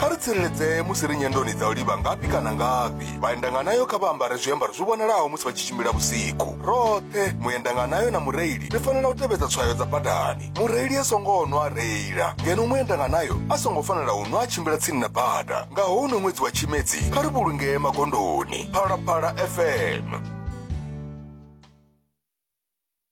kha ri tsireledzee musi ri nyendoni dza u livha ngafhi kana ngafhi vhaendanganayo kha vha ambare zwiambaro zwi vhonalaho musi vha tshi tshimbila vhusiku roṱhe muendanganayo na mureili ri fanela u tevhedza tswayo dza badani mureili a songo nwa a reila ngeno muendanganayo a songo fanela u nwa a tshimbila tsini na bada nga houno ṅwedzi wa tshimedzi kha ri vhulungee magondoni phalaphala fm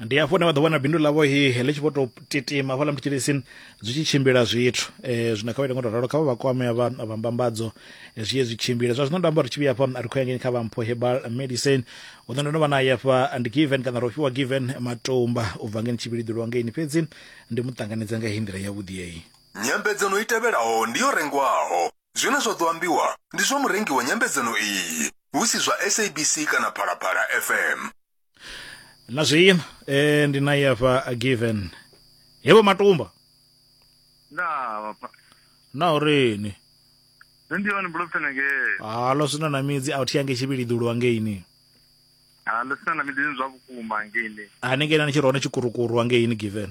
ndi hafho hune vha ḓo vhona bindu ḽavho he ḽi tshi vho tou titima hafhaḽa mutshilisi zwi tshi tshimbila zwithu um zwino kha vha ite ngo to ralo kha vha vha kwamea vha vha mbambadzo eh, zwi ye zwi tshimbile zwa zwino nda amba uri tshi vhuya hafha ri khou ya ngeni kha vha mpho hebal medicine u ḓo ndo no vha naye hafha ndi given kana ro fhiwa given matumba u bva ngeni tshivhiliḓi lwa ngeini fhedzi ndi mu ṱanganedza nga heyi nḓila yavhuḓi yeyi Nyambedzano i tevhelaho ndi yo rengwaho. Zwine zwa ḓo ambiwa ndi zwa murengi wa nyambedzano iyi, hu si zwa SABC kana Phalaphala FM. na zwiima eh, ndi naye hafha a given hevho matumba ndaa vhapa na urini nṋe ndi one bulofutana ngee halo sina na midzi a thi yange tshivhiliḓulu hangeini ha ḽo sina na miḓini zwa vhukuma ngeini hanengei na ni tshi ri hone tshikurukuru hangeini given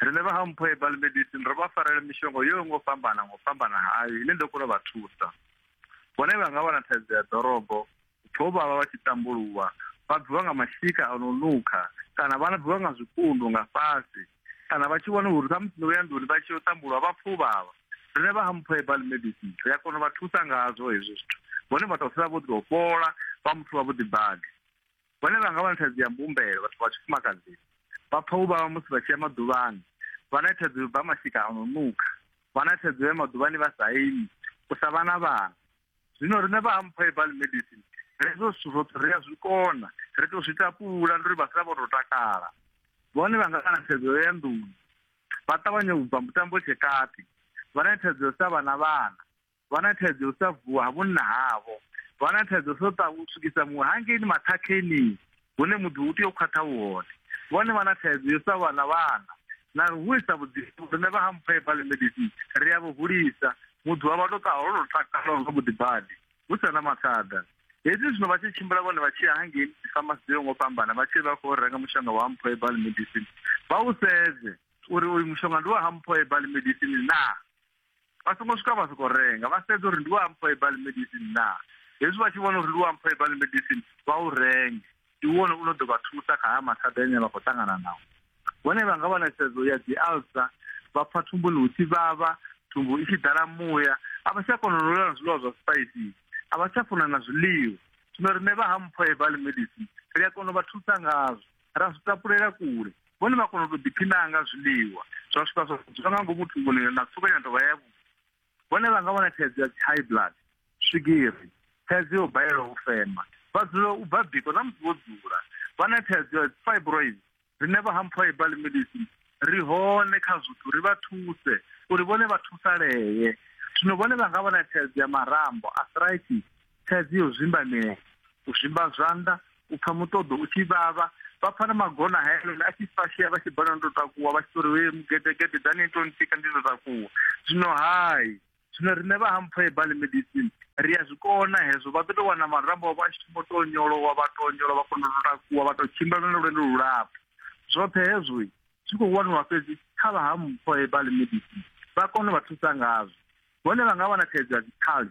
Rine vha Hampho Herbal Medicine ro vha farela mishonga yo ngo fhambana ngo fhambana hayo ine ndo kona vha thusa. Vhone vha nga wana thaidzo ya ḓorobo, pfho vha vha vha tshi tambuluwa, vha bviwa nga mashika a no nukha kana vha bviwa nga zwipundu nga fhasi kana vha tshi vhona uri khamusi no ya nḓuni vha tshi yo tambulwa vha pfuvhavha. Rine vha Hampho Herbal Medicine ri a kona vha thusa ngazwo hezwo zwithu. Vhone vha tou sala vho ḓo fhola vha muthu wa vhuḓi badi. Vhone vha nga vha na thaidzo ya mbumbelo, vhathu vha tshifumakadzini. Vha pfa u vhavha musi vha tshi ya maḓuvhani. Vha na thaidzo yo bva mashika a no nukha. Vha na thaidzo ya maḓuvhani vha sa imi, u sa vha na vhana. Zwino riṋe vha Ampho Herbal Medicine, hezwo zwithu zwoṱhe ri a zwi kona, ri tou zwi tapula ndi uri vha sala vho tou takala. Vhone vha nga vha na thaidzo ya nḓuni, vha ṱavhanya u bva mutambo tshekati. Vha na thaidzo ya u sa vha na vhana. vha na thaidzo yo sa vuwa ha vhunna havho vha na thaidzo so ta u swikisa muṅwe hangeini maṱhakhenii hune muḓi u tea u khwaṱha u hone vhone vha na thaidzo yo sa vhana vhana na ri hulisa vhuḓifho rine vha ha mpha ibale medicine ri a vhu hulisa muḓi wa vha to ṱaho lwo takala nga vhuḓi badi hu sa na mathada hezwi zwino vha tshi tshimbila vhone vha tshi ya hangeini dzifamasi dzo yo ngo fhambana vha tshi vha khou renga mushonga wa mpho ibale medicine vha u sedze uri uyu mushonga ndi wa ha mpho ibale medicine naa vha songo swika vha sokou renga vha sedza uri ndi wa amphoebal medicine na hezwi vha tshi vhona uri ndi wa amphoebal medicine vha u renge ndi wone u no ḓo vha thusa kha haya mathada ane vha khou ṱangana nao vhone vha nga vha na sedzo ya dzi alsa vha pfa thumbuni hu tshi vhavha thumbu i tshi ḓala muya a vha tsha kona u ḽa zwiḽiwa zwa spices a vha tsha funa na zwiḽiwa zwino riṋe vha ha mphoebal medicine ri a kona u vha thusa ngazwo ra zwi tapulela kule vhone vha kona u to ḓiphinaa nga zwiḽiwa zwa swika zwa dzula nga ngomu thunguni na tsukanya dovha ya vhu vhone vha nga vhona thaidzo ya high blood swigiri thaidzo yo balelwa u fema vha dzula u bva biko na musi vho dzula vha na thaidzo ya fibroid rine vha hampfha ibali medicine ri hone kha zwithu ri vha thuse uri vhone vha thusalee zwino vhone vha nga vha na thaidzo ya marambo arthritis thaidzo yo zwimbanea u zwimba zwanḓa u pfha muṱoḓo u tshi vhavha vha pfha na magona haelela a tshi fashea vha tshi bona ndo takuwa vha tshi tori we mugedegede dani to ntika ndi ndo takuwa zwino hai zwino riṋe vha hampfhoe bali medicine ri a zwi kona hezwo vha ḓo tou wana marambo avho a tshi thoma to nyolowa vha to nyolowa vha kona u takuwa vha to tshimbila na lwendo lulapfu zwoṱhe hezwo zwi khou waniwa fhedzi kha vha hampfhoe bali medicine vha kone vha thusa ngazwo hone vha nga vha na thaidzo ya dzikhali